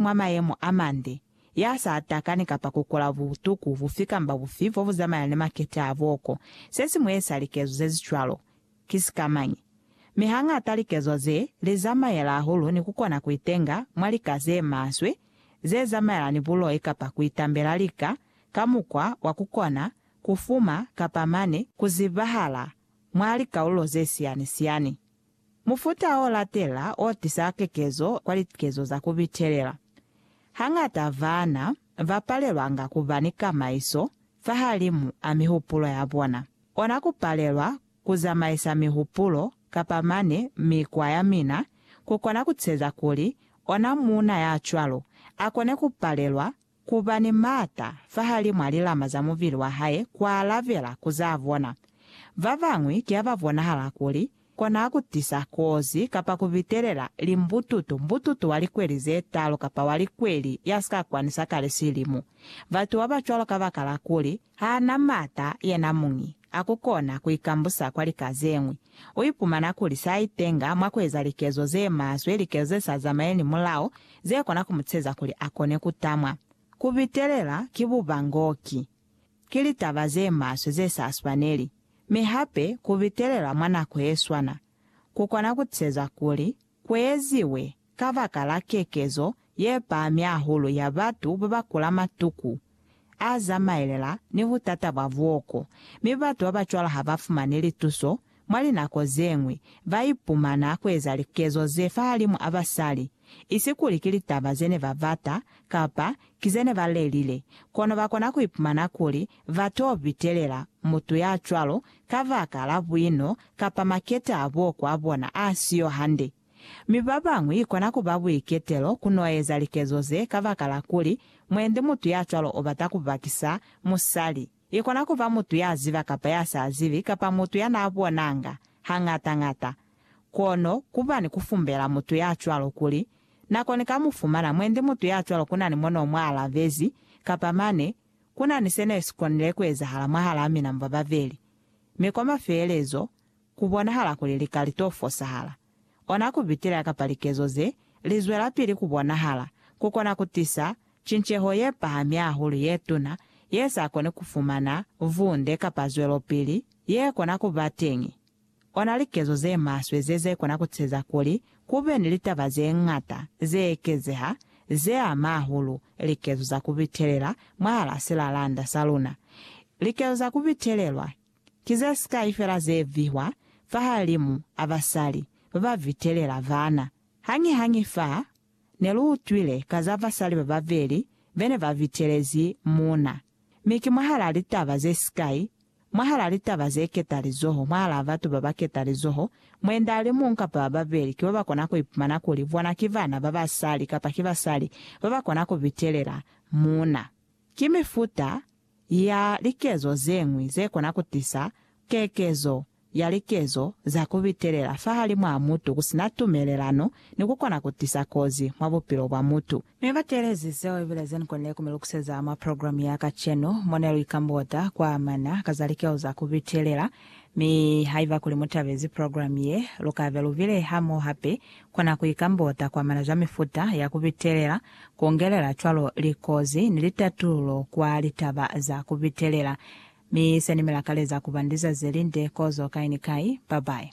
mwa mayemo a mande, ya sa takani kapa ku kola butuku bufi kamba bufi bo bu zamana ni makete a booko. Se si mueza likezo ze si cwalo, ki sikamañi? Mi hañata likezo ze li zamaela hahulu ni ku kona ku itenga mwa lika ze maswe ze zamaela ni buloi kapa ku itambela lika ka mukwa wa ku kona ku fuma kapa mane ku zibahala mwa likaulo ze siyani-siyani Mufuta o latela o tisa kekezo kwa likezo za ku bitelela. Hañata baana ba palelwanga ku ba ni kamaiso fahalimu a mihupulo ya bona, ona ku palelwa ku zamaisa mihupulo kapa mane mikwa ya mina ku kona ku teza kuli ona muuna ya cwalo a kone ku palelwa Ku ba ni m'ata fahalimw'a lilama za mubili wa hae ku alabela ku za bona. Ba bañwi ki ha ba bonahala kuli kona ku tisa kozi kapa ku bitelela limbututu, mbututu wa likweli ze talu kapa wa likweli ya si ka kwani sa kale silimu. Batu ba ba cwalo kabakala kuli ha na m'ata yena muñi a ku kona ku ikambusa kwa lika ze ñwi, u ipumana kuli s'a itenga mwa ku eza likezo ze maswe, likezo ze sa zamaeli ni mulao, ze kona ku mu ceza kuli a kone ku tamwa. Ku bitelela ki bubangoki. Ki litaba ze maswe ze sa swaneli. Mi hape, ku bitelela mwa nako ye swana, ku kona ku ceza kuli ku eziwe kabakala kekezo ye pahami hahulu ya batu ba ba kula matuku. A zamaelela ni ku tatabwa buoko, mi batu ba ba cwalo ha ba fumani lituso, mwa linako ze ñwi ba ipumana ku eza likezo ze fahalimu a basali, isi kuli ki litaba ze ne ba bata, kapa ki ze ne ba lelile, kono ba kona ku ipumana kuli ba t'o bitelela mutu ya cwalo kabaka la buino kapa maketa a buoko a bona a si yo hande. Mi babañwi ikona kuba buiketelo ku no eza likezo ze kabakala kuli mwendi mutu ya cwalo o bata ku bakisa musali. Ikona kuba mutu ya ziba kapa ya sa zibi kapa mutu ya na bonanga hañata-ñata. Kono kuba ni ku fumbela mutu ya cwalo kuli, Na koni ka mu fumana mwendi mutu ya cwalo ku na ni mo no mu alabezi, kapa mane, Ku na ni se ne si konile ku ezahala mwahalaa mina mwa babeli. Mi kwa mafeelezo, ku bonahala kuli li ka li to fosahala. Ona ku bitelela kapa likezo ze li zwelapili ku bonahala ku kona ku tisa cinceho ye pahami hahulu ye tuna ye sa koni ku fumana vunde kapa zwelopili ye kona ku ba teñi. Ona likezo ze maswe ze ze kona ku teza kuli ku be ni litaba ze ñata ze ekezeha ze ama hahulu likezo za ku bitelela mwahal'a silalanda sa luna. Likezo za ku bitelelwa Ki ze sikai fela ze vihwa fahalimu a basali ba ba vitelela bana. Hañihañi fa ne lu utwile ka za basali ba babeli be ne ba vitelezi muuna. Mi ki mwahalaa litaba ze sikai, mwahalaa litaba ze keta lizoho, mwahalaa batu ba ba keta lizoho, mweenda a li muñwi kapa ba babeli ki ba ba kona ku ipumana kuli bona ki bana ba basali kapa ki basali ba ba kona ku vitelela muuna. Ki mifuta ya likezo ze ñwi ze kona ku tisa kekezo ya likezo za ku bitelela fahalimw'a mutu ku si na tumelelano ni ku kona ku tisa kozi mwa bupilo bwa mutu. Ne ba teelezi seo ibile ze ni konile ku mi lukuseza mwa programe ya kacenu, mo ne lu ikambota kwa amana ka za likezo za ku bitelela. Mi haiba kuli mu tabezi programe ye, lu ka be lu bile hamoho hape kwa nako ikambota kwa amana za mifuta ya ku bitelela Kungelela cwalo likozi ni litatululo kwa litaba za kubitelela. Mi se ni mi lakaleza kuba ni lizazi lelinde kozo kai ni kai. Bye bye.